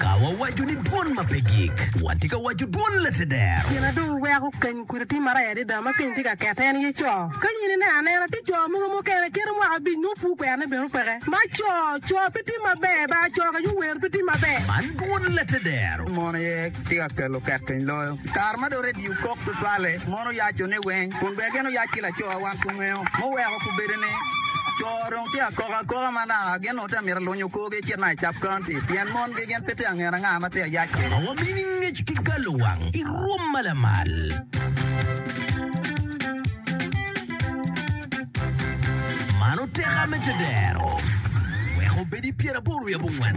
Ka wawaco ni dwon ma pe gik, watye ka waco dwon lateder. Pien adong aweko keny kudi atir maraya adada ma keny tye ka kette, en aye co. Ka in ineno anena, tye co mogo mukene kite mwaka abic nongo pur kwerone bene opeke. Ma co, co pe tim maber, ba co ka yo wer pe tim maber. Man dwon lateder. Mon aye tye ka kelo kekeny loyo. Kare ma dong redio kok tutwalle, mon oyacone weng kun bene gin oyac ki lacowa wan kungeyo. Muweko kubedo ni, co dong tye akoka akoka ma naka gin onongo tye ka mito lunyo korgi ecit naka i Cap County pien mon gi gin pe tye ka ngene anga ma tye ka yac kwede. Ma wabino i ngec ki galo wang i rwom ma lamal. Mano teka me tedero weko obedi pyeraboro wiye abongwen.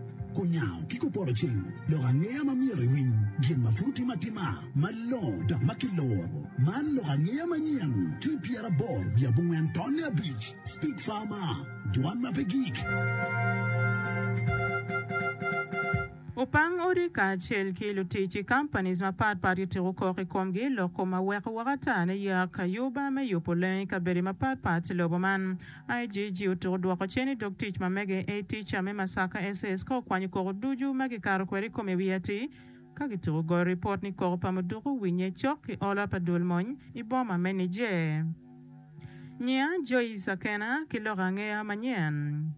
Kunyango ki kupoto cing lok angeya ma myero iwiny gin ma pud otime atima malongo dok ma kiloro. Man lok angeya manyen ki i pyeraboro wiye abongwen tonne abic. Speak Farmer, Dwan ma pe gik. Opang odi kacel ki lutic i companies mapat pat kitiko kok i komgi loko ma weko woko ata ne yak ayuba me yubo lengo i kabedi mapat pat i lobo man. IGG otuko dwoko cen i dog tic ma mege A Teacher me Masaka SS ka okwanyo koko ducu ma gikato kwede i kome wiye atir ka gituko goyo ripot ni koko pa muduku owinye cok ki olo pa dul mony i boma me Niger. Nyiya Joyce Akena ki lok angeya manyen.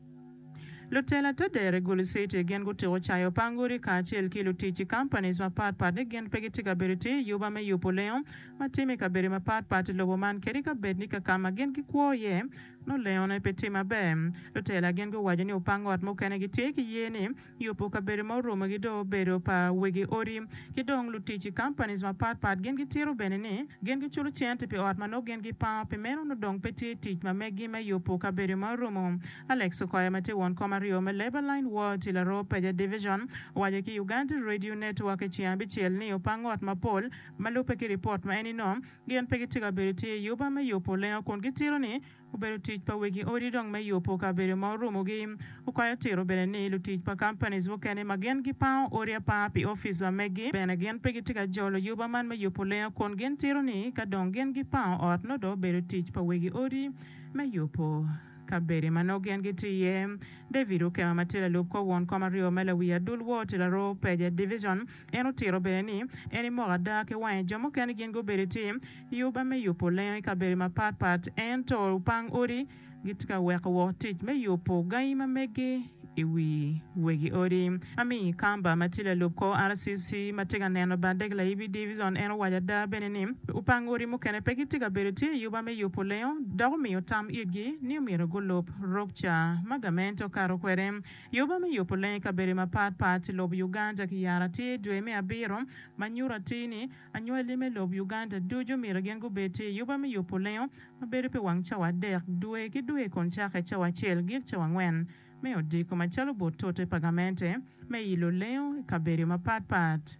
Lutela te dere Gulu City gin gutuko cayo pa angodi kacel ki lutic i companies mapat pat ni gin pe gitye ka bedo tir i yuba me yubo lengo ma timo i kabedo mapat pat i lobo man kadi ka bed ni ka ka ma gin gikwo iye nongo lengone pe tye maber. Lutela gin guwaco ni opang ot mukene gitye ki ye ni yubo kabedo ma oromogi dong obedo pa wegi odi ki dong lutic i companies mapat pat gin gitito bene ni gin giculo cente pi ot ma nongo gin gipango pi meno nongo dong pe tye tic ma megi me yubo kabedo ma oromo. Alex Okoya ma tye won kom aryo me Labour Line Ward i Laroo Paja Division owaco ki Uganda Radio Network i ceng abicel ni opang ot mapol Ma lubbe ki ripot ma en inom, gin pe gitye ka bedo tye i yuba me yubo lengo kun gitito ni obedo tic pa wegi odi dong me yubo kabedo ma orumogi. Okwayo tiro bene ni lutic pa companies mukene ma gin gipango odi apanga pi office ma megi bene gin pe gitye ka jolo yuba man me yubo lengo kun gin tito ni ka dong gin gipango ot nongo dong obedo tic pa wegi odi me yubo kabede ma nongo gin gitye iye. David Ukema ma tye lalub kor won kom aryo me lawi adul wor tye laroo peje, division, En otito bene ni, En imoko ada ki wange. Jo mukene gin gubedo ki yuba me yubo lengo i kabedo mapat pat, ento lupang odi gitye ka weko woko tic me yubo gangi ma meggi i wi wegi odi. Amy Kamba ma tye lalub kor RCC ma tye ka neno bade gilayibi divizon, en owaco ada bene ni, lupang odi mukene pe gitye ka bedo ki yuba me yubo lengo dok omiyo tam itgi ni omyero gulub rok ca ma gamente okato kwede. Yoba me yubo leng i kabedo mapat pat i lob Uganda ki yara tye dwe me abiro ma nyuto atir ni anywali me lob Uganda ducu myero gin gubed tye i yoba me yubo lengo ma bedo pi wang cawa adek dwe ki dwe kun cake i cawa acel gik cawa angwen me odiko macalo bot tute pa gamente me ilo lengo i kabedo mapat pat.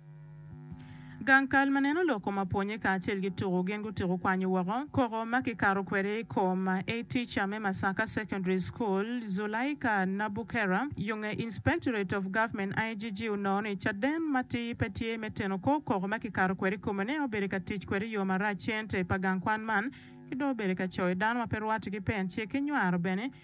Gang kal ma neno lok kom apwonye kacel ki tuku gin gutuku kwanyo woko koko ma kikato kwede i kom A teacher me Masaka Secondary School, Zulaika Nabukera, yo nge Inspectorate of Government, IGG, onongo ni caden matir pe tye me teno kor koko ma kikato kwede i kome ne obedo ka tic kwede i yo marac cente pa gang kwan man ki dong obedo ka coyo dano ma pe rwatte ki pen cik ki nywaro bene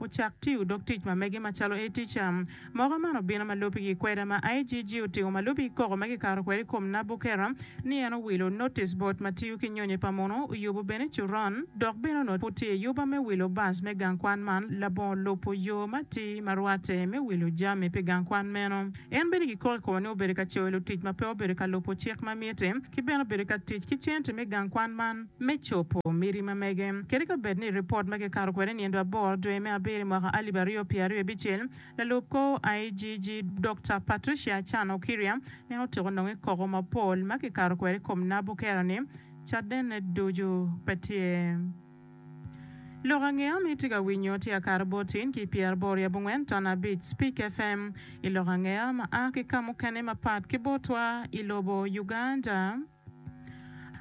ocak tiyo dog tic ma mege macalo ATCA. Moka man obino ma lubbe ki kweda ma IGG otingo ma lubbe ki koko ma kikato kwede i kom Nabukera ni en owilo notice board ma tiyo ki nyonyo pa muno oyubo bene coron dok bene onongo pud tye i yuba me wilo bus me gang kwan man labongo lubo yo matir ma rwatte me wilo jami pi gang kwan meno. En bene kikoki koko ni obedo ka coyo lutic ma pe obedo ka lubo cik ma mitte ki bene obedo ka tic ki cente me gang kwan man. me cobo miti ma mege. Kadi ka bed ni ripot ma kikato kwede nino aboro dwe me abiro i mwaka alip aryo pye aryo abicel, lalub kor IGG Dokta Patricia Achan Okiria en otyeko nonge koko mapol ma kikato kwede i kom nabo kero ni cadene ducu pe tye. Lok ange ami tye ka winyo tye akato botin ki pyer aboro i abongwen ton abic Speak FM i lok ange ma a ki ka mukene mapat ki botwa i lobo Uganda.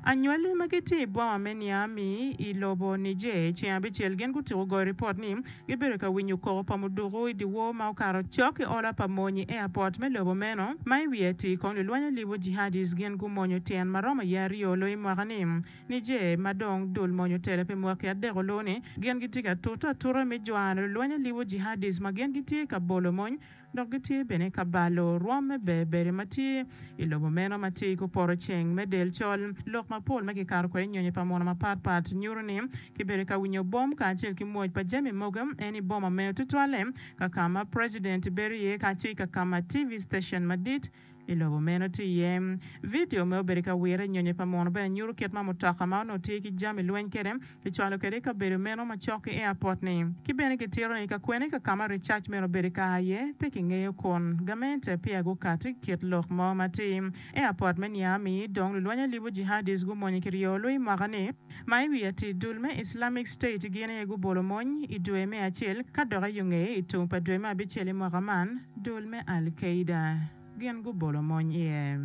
Anywali ma gitye i boma me Niami i lobo Niger, ceng abicel gin gutyeko goyo ripot ni gibedo ka winyo koko pa muduku i dyewor ma okato cok ki ola pa mony i airport me lobo meno, ma i wiye atir kong lulwany alibo Jihadist gin gumonyo tyen ma romo aye aryo loyo i mwaka ni. Niger, ma dong dul mony otelo pi mwaki adek oloo ni, gin gitye ka tute atuta me jwano lulwany alibo Jihadist ma gin gitye ka bolo mony dok gitye bene ka balo rwom me berberi ma tye i lobo meno ma tye i kor poto ceng me del col. Lok mapol ma kikato kwede nyonyo pa mono mapatpat nyuto ni kibedo ka winyo bom kacel ki mwoc pa jami mogo en i boma meno, tutwalle ka ka ma preciden bedo iye kacel ki ka ka ma TV citecen madit. I lobo meno tye iye. Vidio me Obedo i ka Wire Nyonyo pa Muno bene nyuto kit ma mutoka ma onongo tye ki jami lweny kwede kicwalo kwede i kabedo meno macok ki airport-ni. Ki bene kitito ni kakwene ka ka ma Richards myero obed i kare aye pe kingeyo kun gamente peya gukati i kit lok mo ma atir. Airport me Niamey dong lulweny alibo Jihadis gumonye ki ryo lweny mwaka-ni. Ma i wi atir dul me Islamic State gin aye gubolo mony i dwe me acel ka dok i yo ngeye i tung pa dwe me abicel i mwaka man, dul me Al Qaeda gin gubolo mony iye.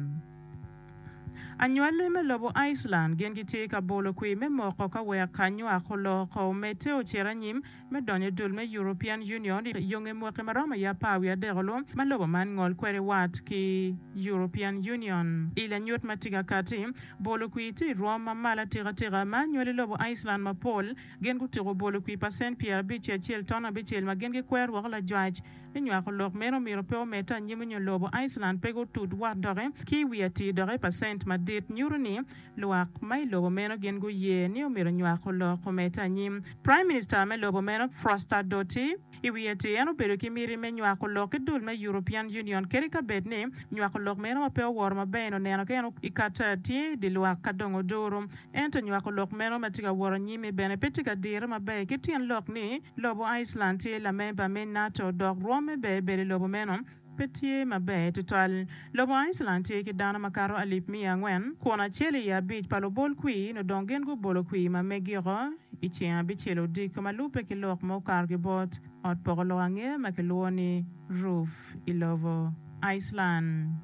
Anywali me lobo Iceland gin gitye ka bolo kwir me moko ka wek anywak oloo oko omedde ocit anyim. me donyo i dul me European Union i yonge mwaki ma romo i apar wiye adekolu ma lobo man ngol kwede wat ki European Union. I lanyut ma tika kati, bolo kwir tye i rwom ma malo atika tika ma anywali i lobo Iceland mapol gin gutuko bolo kwir pacent pyer abic ki acel ton abicel ma gin gikwero rwoko lajwac ni nywako lok meno omyero pe omedde anyim nyo lobo Iceland pe gutut wat doki ki i wi atir doki pacent madit nyuto ni Lwak ma i lobo meno gin guye ni omyero onywak olok omedde anyim. Prime Minister me lobo meno, Froster Doty, i wiye ti en obedo ki miti me nywako olok ki dul me European Union kadi ka bed ni nywako olok meno ma pe oworo maber-ni oneno ka en i kat tye i di lwak ka dong oduro. Ento nywako olok meno ma ti ka woro anyim-mi bene pe ti ka dire maber ki tyen lok ni lobo Iceland tye lamemba me nato dok rwomme bene bedo i lobo meno. Pe tye maber tutwal. Lobo Iceland tye ki dano makato alip miya angwen, kun acel i abic pa lubol kwir nyo dong gin gubolo kwir ma megiko. I ceng abicel odiko ma lubbe ki lok ma okato ki bot ot poko lok angera ma kilwongo ni roof i lobo Iceland.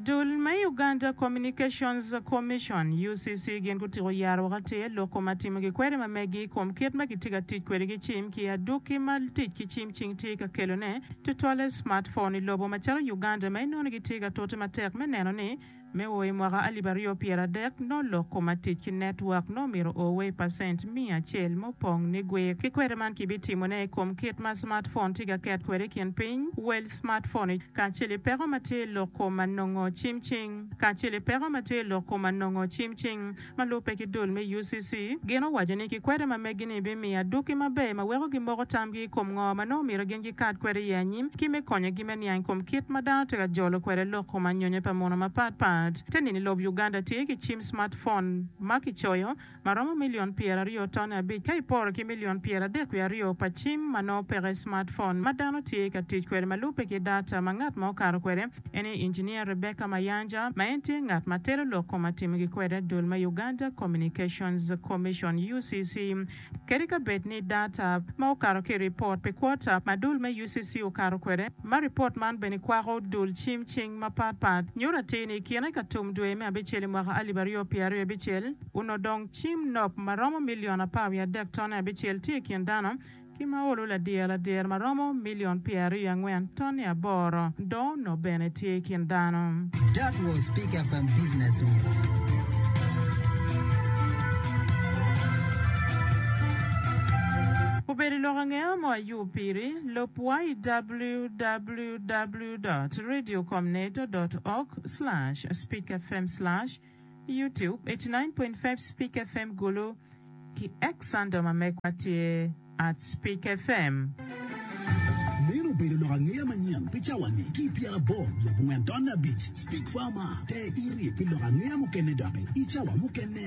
Dul ma i Uganda Communications Commission, UCC, gin gutyeko yaro woko atir lok koma timo ki kweri ma megi i kom kit ma gitye ka tic kwede ki cim ki adwoki ma tic ki cim cing tye ka kelone. Tutwalle smartphone i lobo macalo Uganda ma inono gitye ka tote matek me neno ni me o i mwaka alip aryo pyera adek nongo lok koma tic ki network nongo myero o wa i percent miya acel me opong ni gwer ki kwede man ki bitimo ne i kom kit ma smartphone tye ka ket kwede i kin piny wel smartphone kacel i peko matye i lok koma nongo cimcing kacel i peko matye i lok koma nongo cimcing. ma lubbe ki dul me UCC, gin owaco ni kikwede ma megi-ni bimiyo adwoki maber ma weko gimoko tamgi i kom ngo ma nongo myero gin gikat kwede iye anyim ki me konyogi me niang kom kit ma dano tye ka jolo kwede lok kom anyonyo pa muno mapat pat. Te nino i lob Uganda tye ki cim smart phone ma kicoyo ma romo milion pyera ryo tone abic ka iporo ki milion pyera adek wiye aryo pa cim ma nongo peke smart phone ma dano tye ka tic kwede ma lubbe ki data ma ngat ma okato kwede En aye Injiniya Rebecca Mayanja, ma en tye ngat ma telo lok kong ma timogi kwede dul me Uganda Communications Commission, UCC, kadi ka bed ni data ma okato ki i ripot pi kwota ma dul me UCC okato kwede, ma ripot man bene kwako dul cim cing mapat pat, nyuto atir ni i kine ka tum dwe me abicel i mwaka alip aryo pye aryo abicel, onongo dong cim nok ma romo milion apar wiye adek tone abicel tye i kin dano. ki ma olo ladyer ladyer ma romo milion pyeraryo angwen tonni aboro, dong onok bene tye i kin dano. That was Pick FM Business News. Obedo i lok angeya mo ayub piri, lub wa i www dot radio com net dot org slash speak fm slash. YouTube, eighty nine point five Spik FM Gulu, ki Xandom ma megwa tye at Spik FM. Meno obedo lok angeya manyen pi cawa-ni ki i pyerabor nyo abongwen tonne abic. Spik fa ma, te iri pi lok angeya mukene doki i cawa mukene.